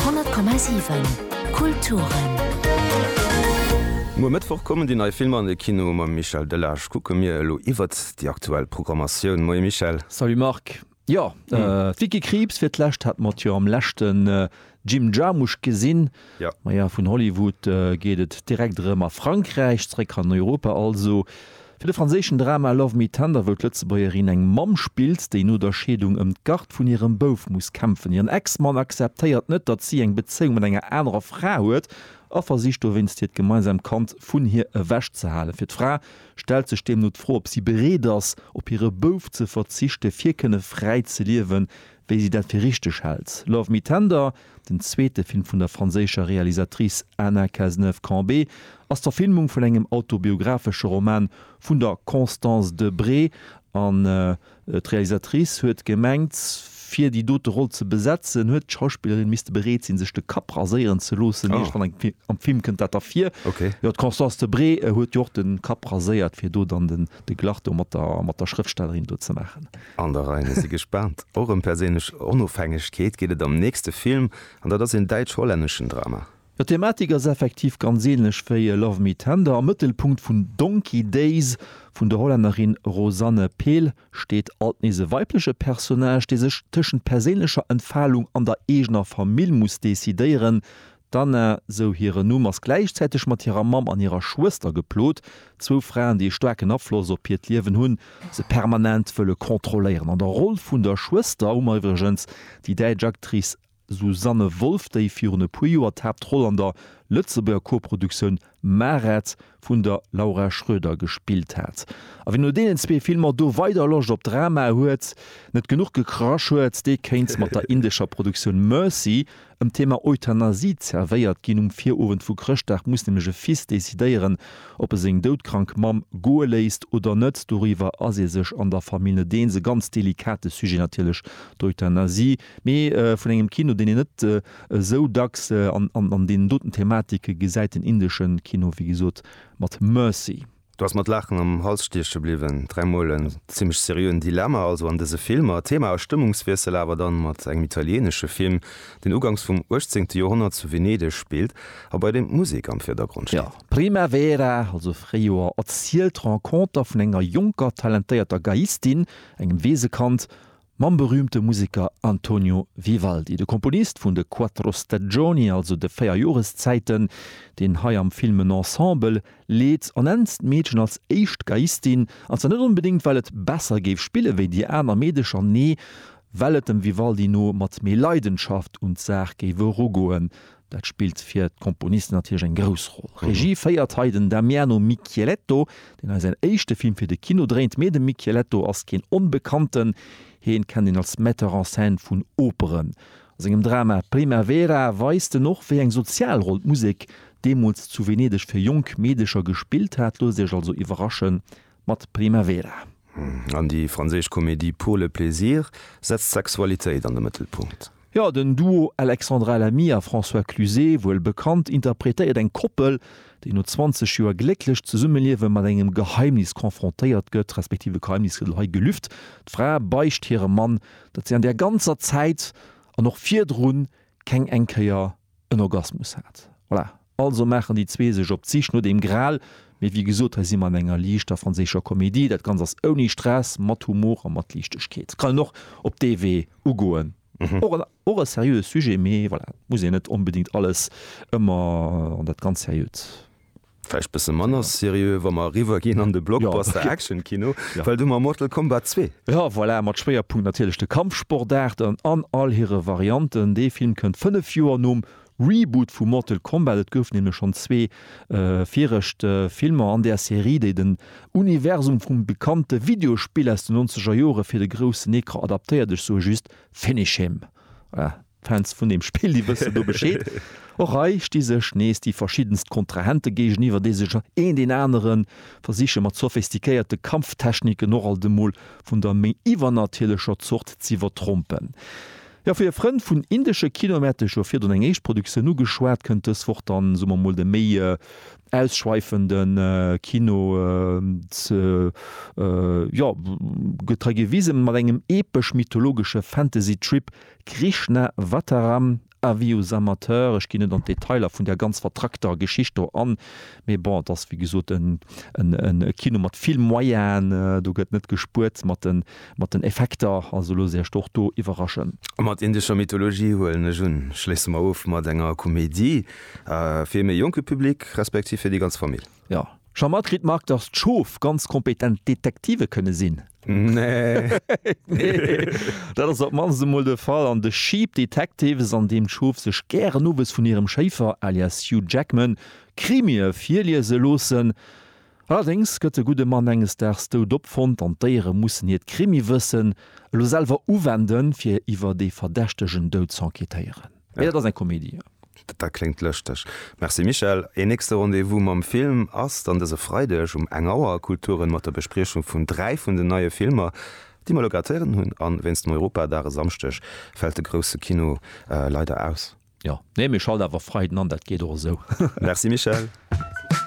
10,7 Kulturen. Muer Mëttwoch kommen déi nei Filmer an de Kino. Mam Michel Delage kucke mir elo iwwert déi aktuell Programmatioun. Moie Michel. Salut Marc. Jo, d'Vicky Krieps fir d'lescht hat mat jo am leschten Jim Jarmusch gesinn. Maja, vun Hollywood geet et direkt erëm a Frankräich, zeréck an Europa also, fir de franséischen Drama Love Me Tender, wou d'Lëtzebuergerin eng Mamm spillt, déi no der Scheedung ëm d'Gard vun hirem Bouf muss kämpfen. Hiren Ex-Mann akzeptéiert net, datt si eng Bezéiung mat enger anerer Fra huet a versicht dowéinst hiert gemeinsamt Kand vun hir ewech ze halen. Fir d'Fra stellt sech deemno d'Fro, ob si bereet ass, op hire Bouf ze verzichten, fir kënne fräi ze liewen, wéi si dat fir richteg hält. Love Me Tender. Den zweete Film vun der franséischer Realisatrice Anna Cazeneuve-Cambé ass d'Verfilmung vun engem autobiographesche Roman vun der Constance de Bré an d'Realisatrice huet gemengt, fir déi dote Roll ze besetzen, huet d'Schauspillerin misste bereet sinn, sech de Kapp raséieren ze loossen. Eréischt dann am Film kënnt dat ervir. Jo, d'Constance de Bré huet jo och de Kapp raséiert, fir do dann de Glacto mat der Schrëftstellerin do ze maachen. An der Rei, mir si gespaant. Och ëm perséinlech Onofhängegkeet geet et am nächste Film, an dat ass een däitsch-hollänneschen Drama. Jo, d'Thematik ass effektiv ganz ähnlech wéi Love Me Tender. Am Mëttelpunkt vun Donkey Days vun der Hollännerin Rosanne Pehl steet alt nees e weibleche Personnage, dee sech tëschent perséinlecher Entfalung an der eegener Famill muss decidéieren. D'Anna, sou hiren Numm, ass gläichzäiteg mat hirer Mamm an hirer Schwëster geplot, zwou Fraen, déi e staarken Afloss op hiert Liewen hunn, se permanent wëlle kontrolléieren. An der Roll vun der Schwëster hu mer iwwregens déi däitsch Actrice Susanne Wolff, déi virun e puer Joer d'Haaptroll an der Lëtzebuerger Koproduktioun Maret vun der Laura Schröder gespillt hat. A wien no deenen zwee Filmer do weider Loscht op Drama huet, net genuch gekrasch huet, dee kéint mat der indescher Produktioun Mercy ëm d'Thema Euthanasie zervéiert ginn. Um Virowend vu Chrëschtdag muss nämlech e Fils decidéieren, ob e seng doudkrank Mamm goe léisst oder net. Doriwwer ass ee sech an der Famill net eens. E ganz delikate Sujet natierlech, d'Euthanasie. Mee vun engem Kino, deen een net esou dacks an deenen doten Thematike gesäit, den indesche Kino, wéi gesot, mat Mercy. Du ass mat Laachen am Hals stieche bliwwen. Dräimol en zimmlech seriöen Dilemma also an dëse Filmer. Thema a Stëmmungswiessel awer dann mat engem italienesche Film, deen uganks vum uechtzéngte Joerhonnert zu Venedeg spillt a bei deem d'Musek am Virdergrond steet. Jo, Primavera, also Fréijoer, erzielt d'Renconter vun enger jonker, talentéierter Geiistin, engem Weesekand mam berüümte Museker Antonio Vivaldi, de Komponist vun de Quattro Stagioni, also de véier Joreszäiten, deen hei am Film en Ensemble leet, ernennt d'Meedchen als éischt Geiistin, an zwar net onbedéngt, well et besser géif spille wéi déi aner Meedecher, nee, well et dem Vivaldi no mat méi Leidenschaft un d'Saach géif erugoen, Dat spillt fir d'Komponisten natierlech eng grouss Roll. Regie féiert hei den Damiano Michieletto, deen hei säin éischte Film fir de Kino dréint. Mee de Michieletto ass keen Onbekannten, hien kennt een als Metteur en scène vun Operen. A sengem Drama Primavera weist en och, wéi eng sozial Roll d'Musek deemools zu Venedeg fir jonk Meedecher gespillt hat. Loosst Iech also iwwerraschen, mat Primavera. An déi franséisch Komedie Pour le plaisir setzt d'Sexualitéit an de Mëttelpunkt. Jo, den Duo Alexandra Lamy a François Cluzet, wuel bekannt, interpretéiert eng Koppel, déi no 20 Joer glécklech Zesummeliewe mat engem Geheimnis konfrontéiert gëtt, respektiv e Geheimnis gëtt hei gelüft, D'Fra beicht hirem Mann, datt si an där ganzer Zäit an och virdrun keng eng Kéier en Orgasmus hat. Voilà. Also maachen déi zwee sech op d'Sich no dem Gral. Mee wéi gesot, hei si mer an enger liichter franséischer Komedie. Dat Ganzt ass ouni Stress, mat Humor a mat Liichtegkeet. Kann een och op dee Wee ugoen. Och e seriöe Sujet, mee voilà, et muss een net onbedéngt alles ëmmer an dat ganz Seriöt. Vläicht bësse manner seriö, wa mer eriwwer ginn an de Blockbuster Action-Kino, well du mam Mortal Kombat 2. Jo, voilà, mat Schwéierpunkt natierlech de Kampfsportaarten an all hire Varianten. Dee Film kënnt fënnef Joer nom Reboot vu Mortal Kombat. Et goufen nämlech schonn zwee viregt Filmer an där Serie, déi den Universum vum bekannte Videospill aus den nonzeger Jore fir de groussen Ecran adaptéiert. Ech soe just, Finish him! D'Fans vun deem Spill, déi wëssen do Bescheed. Och hei sti sech nees déi verschiddenst Kontrahente géigeniwwer, déi sech een deen anere versiche mat sophistiquéierte Kampftechniken och alt emol vun der méi iwwernatierlecher Zort z'iwwertrompen. Jo, fir Frënn vun indesche Kino, mir hate scho virdrun eng éischt Produktioun ugeschwat, kënnt dës Woch dann, soe mer mol, de méi ausschweifende Kino ze jo getrei gewisen, mat engem epesch-mythologesche Fantasy-Trip, Krishna Vataram, Avis aux amateurs, ech ginn net an d'Detailer vun där ganz vertrackter Geschicht do an, mee bon, et ass wéi gesot e Kino mat vill Moyene, do gëtt net gespuert mat de Mat den Effekter, also loosst Iech och do iwwerraschen. A mat indescher Mythologie huelen ech un, schléisse mer of mat enger Komedie fir ee méi jonke Public, respektiv fir déi ganz Famill. Jo, scho mat kritt Marc, dass d'Schof ganz kompetent Detektive kënne sinn. Nee, dat ass op d'mannst emol de Fall an The Sheep Detectives, an deem d'Schof sech gären owes vun hirem Schéifer, alias Hugh Jackman, Krimie virliese loossen. Allerdéngs gëtt de gudde Mann enges Daags dout opfonnt an d'Déiere mussen hiert Krimiwëssen elo selwer uwenden, fir iwwer dee verdächtegen Doud z'enquêtéieren. Mee dat ass eng Komedie. Dat kléngt lëschteg. Merci Michèle. Een nächste Rendez-vous mam Film ass dann dëse Freideg um eng Auer a Kulturen mat der Bespriechung vun dräi vun den neie Filmer, déi mer elo grad héieren hunn. A wéinst dem Europadag e Samschdeg fält de grousse Kino leider aus. Jo, nee, mir schalte awer Freiden an, dat geet och esou. Merci Michèle.